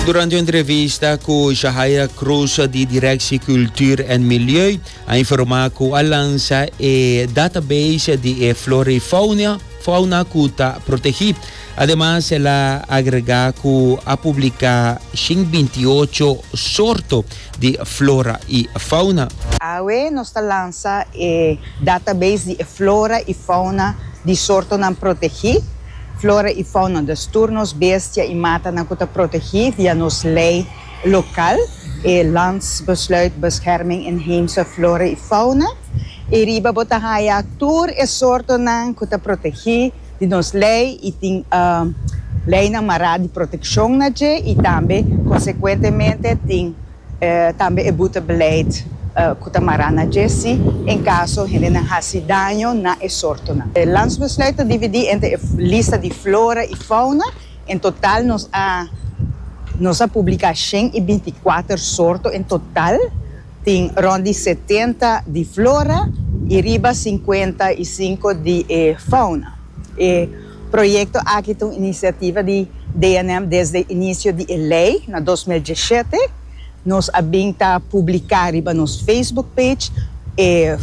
Durante un entrevista cu Jahaira Cruz di Directie Cultuur en Milieu a informa cu a lansa e database di e flora y fauna cu ta protegi. Ademas el a agrega cu a publica shin binti ocho sorto di flora y fauna. Awe nos ta lansa e database di e flora y fauna di sortonan protegi. Flora i fauna dus tur nos bestia i matanan ku ta protegí via nos lei lokal, e Landsbesluit Bescherming Inheemse Flora i Fauna. E riba bo ta haya tur e sortonan ku ta protegí di nos lei i tin leinan mará di protekshon na dje i tambe konsekuentemente tin. Tambe e buta beleid ku ta mará na dje si en kaso hendenan hasi daño na e sortonan. E Landsbesluit ta dividí entre e lista di flora i fauna. En total nos a nos a publiká shen i binti i kuater sorto en total. Tin rònt di setenta di flora i riba sinkuenta i sinku di e fauna. E. Proyekto aki ta un inisiativa di DNM desde inisio di e lei na dos mil diesete. Nos a bin ta publiká riba nos Facebook page e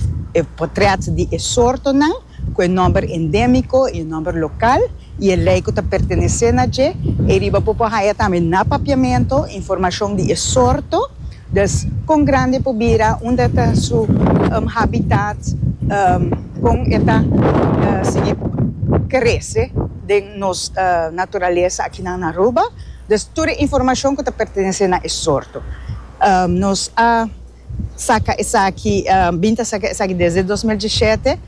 potrèt di e sortonan ku e nòmber endémiko i e nòmber lokal i e lei ku ta pertenesé na dje. Ei riba bo por haña tambe na Papiamentu informashon di e sorto. Des con grandi por bira unda ta su habitat con e ta sigui crece den nos naturalesa akinan na Aruba. Des tur e informacion cu ta pertenece na e sorto. Nos a saca esaki, bin ta saca esaki desde dos mil dieschete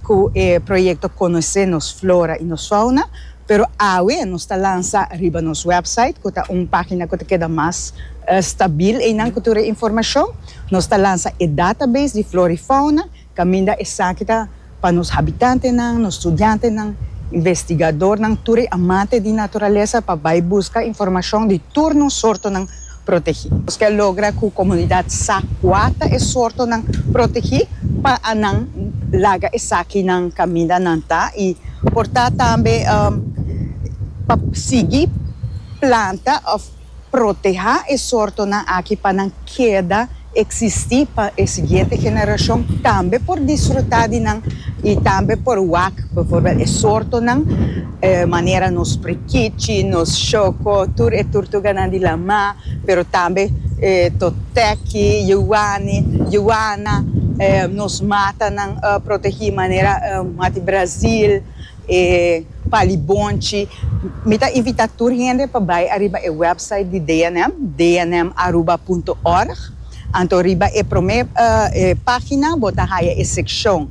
cu e proyecto Conoce nos flora y nos fauna. Pero awe nos ta lansa riba nos website, ku ta un página ku ta keda mas stabil einan ku tur e informashon. Nos ta lansa e database di flora i fauna kaminda esaki ta pa nos habitantenan, nos studiantenan, investigadornan, tur e amante di naturalesa pa bai buska informashon di tur nos sortonan. protegí. Nos ke logra ku komunidat sa kua ta e sortonan protegí pa nan laga esakinan kaminda nan ta i por ta tambe pa sigui planta òf protehá e sortonan aki pa nan keda. eksistí pa e siguiente generashon tambe por disfrutá di nan i tambe por wak bivoorbeeld e sortonan manera nos prikichi, nos shoko, tur e turtuganan di lamá, pero tambe e toteki, yuwani, yuwana, nos matanan protegí manera Mati Brazil. E palibonchi, Mi ta invita tur hende pa bai ariba e website di DNM, dnmaruba.org. Anto riba e prome pagina bo ta haya e seccion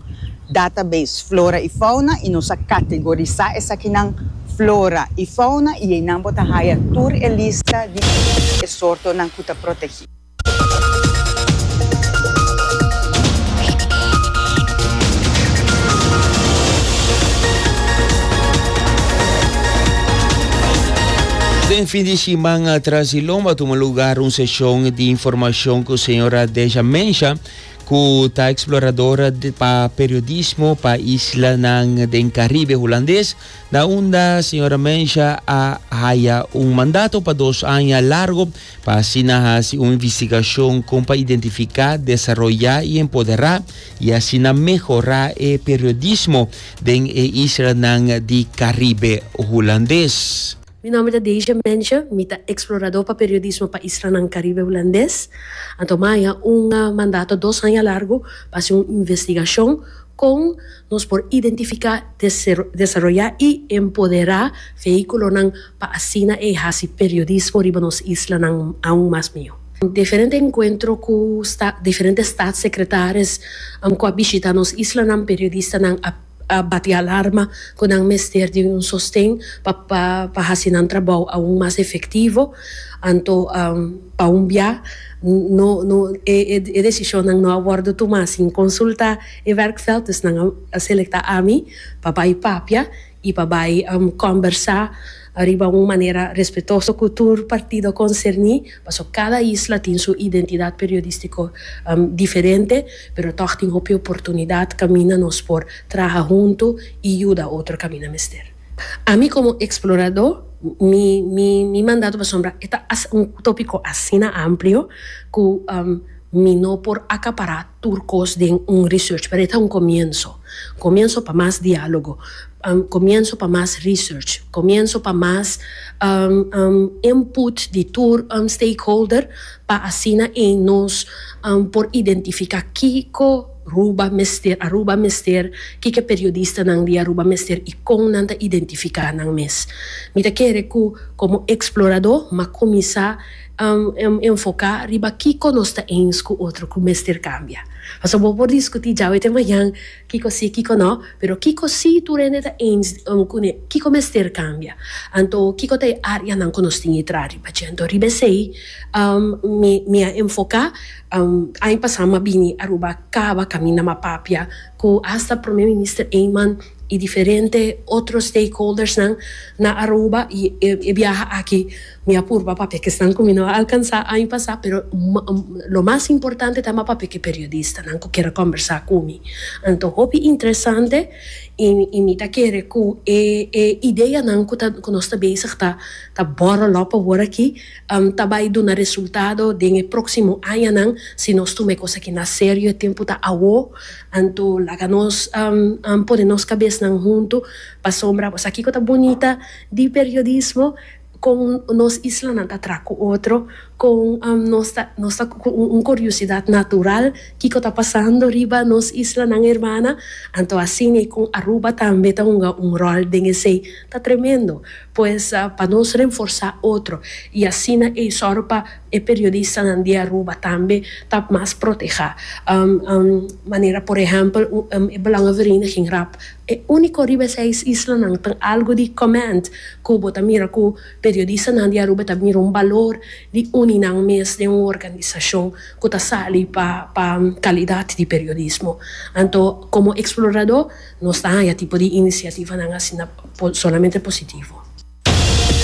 Database Flora y Fauna y nos a categorisa esakinan Flora y Fauna y einan bo ta haya tur e lista di e sortonan cu ta protegi. Den fin di siman atras di lomba tuma lugar un seshon di informashon ku señora Deja Mensha, ku ta eksploradora pa periodismo pa islanan den Karibe Hulandes, na unda señora Mensha a haya un mandato pa dos aña largo Pa asina hasi un investigashon kon pa identifiká, desaroyá i empoderá i asina mehorá e periodismo den e islanan di Karibe Hulandes. Mi nòmber ta Deja Mensje, mi ta eksploradó pa periodismo pa islanan Karibe Hulandes. Anto mi a haña un mandato dos haña largu pa hasi un investigashon kon nos por identifiká, desaroyá i empoderá vehíkulonan, pa asina e hasi periodismo riba nos islanan aun mas mihó. Diferente enkuentro ku diferente Statssekretaris ku a bishitá nos islanan, periodistanan a bati alarma ku nan mester di un sosten pa hasi nan trabou aun mas efektivo. Anto pa un bia e desishonnan no a wòrdu tumá sin konsultá e werkveld, dus nan a selektá ami pa bai papia. y pa bay combersa riba un manera respetoso cu tur partido concerni, pasobra cada isla tin su identidad periodistico diferente, pero toch tin hopi oportunidad caminda nos por traha hunto y yuda otro caminda mester. Ami como explorador mi mi mandato pasobra e ta un topico asina amplio cu mi no por acapara tur cos den un research pero e ta un comienso, comienso pa mas dialogo, comienso pa mas research, comienso pa mas input di tur stakeholder pa asina ein nos por identifica kico Aruba mester, Aruba mester, kico e periodistanan di Aruba mester y con nan ta identifica nan mes. Mi ta kere cu como explorador m'a cuminsa Enfoká riba kiko nos ta ēns ku otro ku mester kambia. Pasobra bo por diskutí djawe te mañan kiko sí, kiko nō, pero kiko sí tur hende ta ēns ku ne kiko mester kambia. Anto kiko ta e áreanan ku nos tin ke traha riba dje? Anto riba esei mi mi a enfoká. Aña pasá mi a bini Aruba a kaba kaminda mi a papia ku hasta Prome Minister Eman i diferente otro stakeholdersnan na Aruba i e biaha aki. Mi a purba papia cu esnan cu mi no a alcansa año pasa, pero lo mas importante ta ma papia cu e periodistanan cu kier a combersa cu mi. Anto hopi interesante y mi ta kere cu e e ideanan cu ta cu nos ta bezig ta ta borrel op awor aki ta bay duna resultado den e proximo añanan si nos tuma e cos aki na serio. E tempo ta awor, anto laga nos pone nos cabesnan hunto pasobra asakico ta bunita di periodismo. Kon nos islanan ta traha ku otro, kon nos ta nos ta ku un kuriosidat natural kiko ta pasando riba nos islanan hermana, anto asina i kon Aruba tambe ta hunga un ròl den esei ta tremendo. Pues pa nos renforsá otro i asina ei sòru pa. E periodistanan di Aruba tambe ta mas protehá manera por ehèmpel e Belangenvereniging rap. E úniko riba e seis islanan ta algu di comment ku bo ta mira ku periodistanan di Aruba ta mira un balor di uni nan mes den un organisashon ku ta sali pa pa kalidat di periodismo. Anto komo Eksploradó nos ta haña tipo di inisiativanan asina solamente positivo.